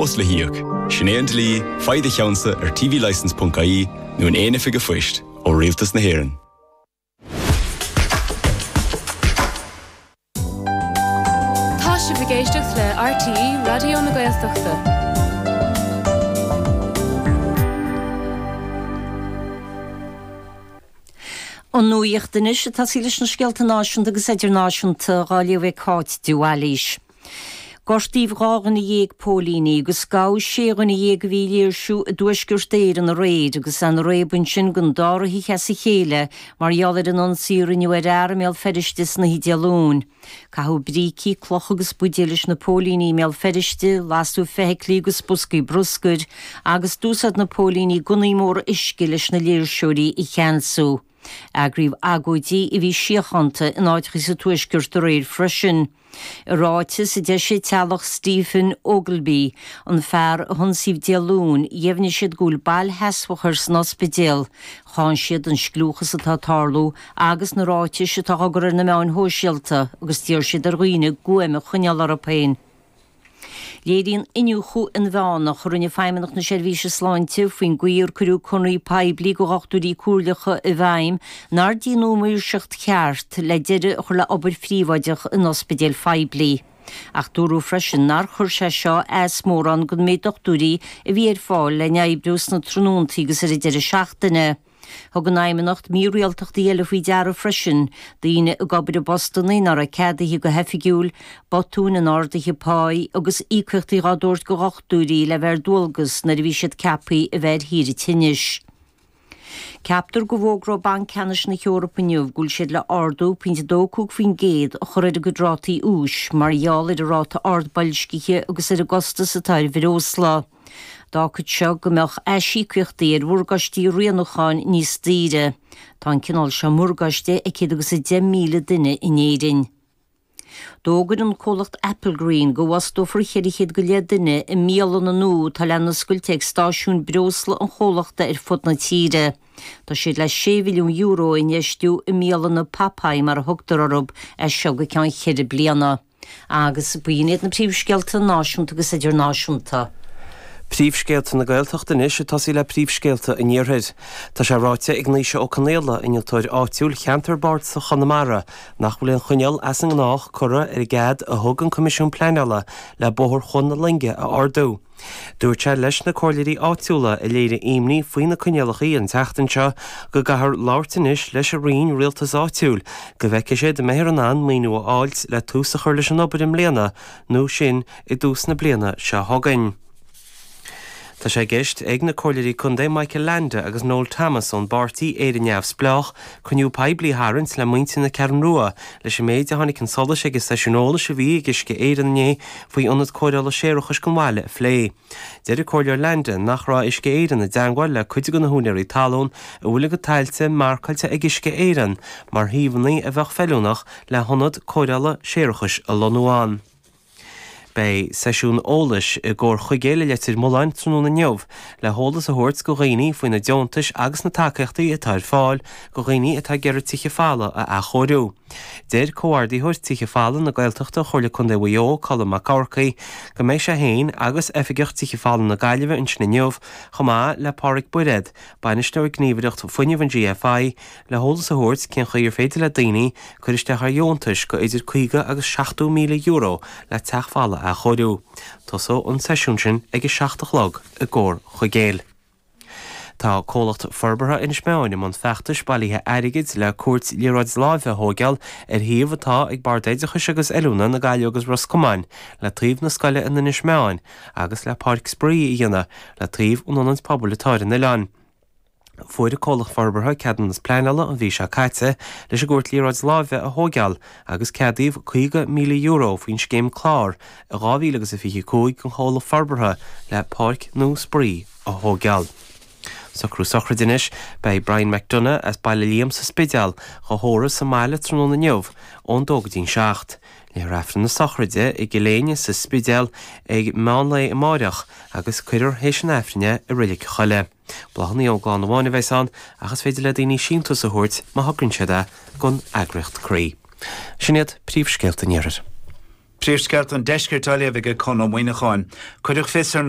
Costas le híoc, sin é an dlí, faigh do cheannsa ar tvlicence.ie nó in aon oifig a'phoist ó Rialtas na hÉireann. Tá sibh ag éisteacht le RTÉ Raidió na Gaeltachta. An nuacht anois, ag tosaí leis na scéalta náisiúnta agus idirnáisiúnta dhá léamh ag Cáit de Bhailís. Gortaíodh dhá dhuine dhéag póilíní agus gabhadh sé dhuine dhéag a bhí ag léirsiú i dTuaisceart Éireann aréir agus tá an réabadh ansin don dara hoíche as a chéile mar gheall ar an ionsaí a rinneadh ar fhear i mBéal Feirste san oíche Dé Luain. Caitheadh brící, clocha agus buidéil leis na póilíní i mBéal Feirste, lasadh feithiclí agus boscaí bruscair agus d'úsáid na póilíní gunnaí móra uisce leis na léirseoirí a cheansú. Eagraíodh agóidí a bhí síochánta in áiteacha sa Tuaisceart aréir freisin. I ráiteas a d'eisigh teaghlach Stephen Ogilvie, an fear a hionsaíodh Dé Luain, dheimhnigh siad go bhfuil bail sheasmhach air san ospidéal. Cháin siad an scliúchas atá ag tarlú agus na ráitis atá á gcur ar na meáin shóisialta agus d'iarr siad ar dhaoine guaim a choinneáil orthu féin. Léiríonn iniúchadh inmheánach a rinne Feidhmeannacht na Seirbhíse Sláinte faoin gcaoi ar cuireadh conradh poiblí do dhochtúirí comhairleacha i bhfeidhm nár déanadh maoirseacht cheart le deireadh a chur le obair phríobháideach in ospidéil phoiblí ach dúradh freisin nár chuir sé seo as mórán don méid dochtúirí a bhí ar fáil le n-oibriú sna tráthnóntaí agus ar an deireadh seachtaine. Thug an Fheidhmeannacht mírialtachtaí eile faoi deara freisin, daoine ag obair i bpostanna nár raibh ceadaithe go hoifigiúil, botúin in arduithe páí agus íocaíochtaí dhá dtabhairt go dhochtúirí le bheith ar dualgas nuair a bhí siad ceapthaí a bheith ar shaoire tinnis. Ceaptar go bhfógróidh Banc Ceannais na hEorpa inniu go bhfuil siad le ardú pointe 2 5% a chur ar a gcuid rátaí úis mar gheall ar an ráta ard boilscithe agus ar an gcostas atá ar bhreosla. D'fhágfadh seo go mbeadh aisíocaíochtaí ar mhorgáistí rianúcháin níos daoire. Tá an cineál seo morgáiste ag céad agus a deich míle duine in Éirinn. D'fhógair an comhlacht Applegreen go bhfostófar cheithre chéad go leith duine i mbialanna nua atá le n-oscailt ag stáisiúin breosla an chomhlachta ar fud na tíre. Tá siad le sé mhilliún euro a infheistiú i mbialanna Popeye mar a thugtar orthu, as seo go ceann cheithre bliana. Agus b'in iad na príomhscéalta náisiúnta agus idirnáisiúnta. Príomhscéalta na Gaeltachta anois ag tosaí le príomhscéalta an Iarthair. Tá sé ráite ag Naoise Ó Conaola, innealtóir áitiúil cheantar bardasach Chonamara, nach bhfuil aon choinníoll as an ngnách curtha ar an gcead a thug an Coimisiún Pleanála le Bóthar Chuan na Loinge a ardú. Dúirt sé leis na comhairleoirí áitiúla a léirigh imní faoi na coinníollacha an tseachtain seo go gcaithfear labhairt anois leis an Roinn Rialtais Áitiúil go bhfeicfidh siad an mbeifear in ann maoiniú a fháilt le tús a chur leis an obair i mbliana nó sin i dtús na bliana seo chugainn. Tá sé i gceist ag na comhairleoirí contae Michael Leainde agus Noel Thomas ón bpáirtí Éire Neamhspleách cruinniú poiblí a tharraingt le muintir na Ceathrún Rua leis an méid a tháinig chun solais ag an seisiún eolais a bhí ag Uisce Éireann inné faoi Ionad Cóireála Séarachais an bhaile a phlé. Deir an Comhairleoir Leainde nach raibh Uisce Éireann i dteangmháil le cuid de na húinéirí talún a bhfuil a gcuid tailte marcáilte ag Uisce Éireann mar shuíomhanna a bheadh feiliúnach le hionad cóireála séarachais a lonnú ann. Beidh seisiún eolais i gComhar Chuigéil i Leitir Mealláin tráthnóna inniu le heolas a thabhairt go dhaoine faoi na deontais agus na tacaíochtaí atá ar fáil go dhaoine atá ag iarraidh tithe folmha a athchóiriú. Deir Comhordaitheoir Tithe Folmha na Gaeltachta Chomhairle Contae Mhaigh Eo, Colm Mac Eachmharcaigh, go mbeidh sé féin agus Oifigeach Tithe Folmha na Gaillimhe ansin inniu chomh maith le Páraic Bairéad, Bainisteoir Gníomhaireacht Fuinnimh an GFI, Le heolas a thabhairt cén chaoi ar féidir le daoine cur isteach ar dheontais go idir €50 agus €70,000 le teach folamh a athchóiriú, tosóidh an seisiún sin ag a seacht a chlog i gComhar Chuigéil. Tá Comhlacht Forbartha Inis Meáin i mbun feachtais bailithe airgid le cúirt liathróid láimhe a thóigeáil ar shuíomh atá ag Bord Oideachais agus Oiliúna na Gaillimhe agus Ros Comáin le taobh na scoile in Inis Meáin agus le páirc spraoi a dhéanamh le taobh an ionaid pobail atá ar an oileán. Fuair an Comhlacht Forbartha ceadúnas pleanála an mhí seo caite leis an gcúirt liathróid láimhe a thóigeáil agus ceadaíodh €50,000 faoin scéim CLÁR i 2025 don Chomhlacht Forbartha le Páirc Nua Spraoi a thóigeáil. Socrú sochraide anois. Beidh Brian McDonagh as Baile Liam sa Spidéal dhá thórramh sa mbaile tráthnóna inniu ón dó go dtí'n seacht. Léifear Aifreann na sochraide i gCill Éinne sa Spidéal ag meán lae amáireach agus cuirfear théis an Aifrinn é i Reilig an Choilligh. Bláthanna ón gclann amháin a bheas ann ach is féidir le daoine síntiús a thabhairt má thograíonn siad é gon eagraíocht Croí. Sin iad príomhscéalta an iarthair. Príomhscéalta an deiscirt á léamh ag Conn Ó Muíneacháin. Cuireadh fios ar na.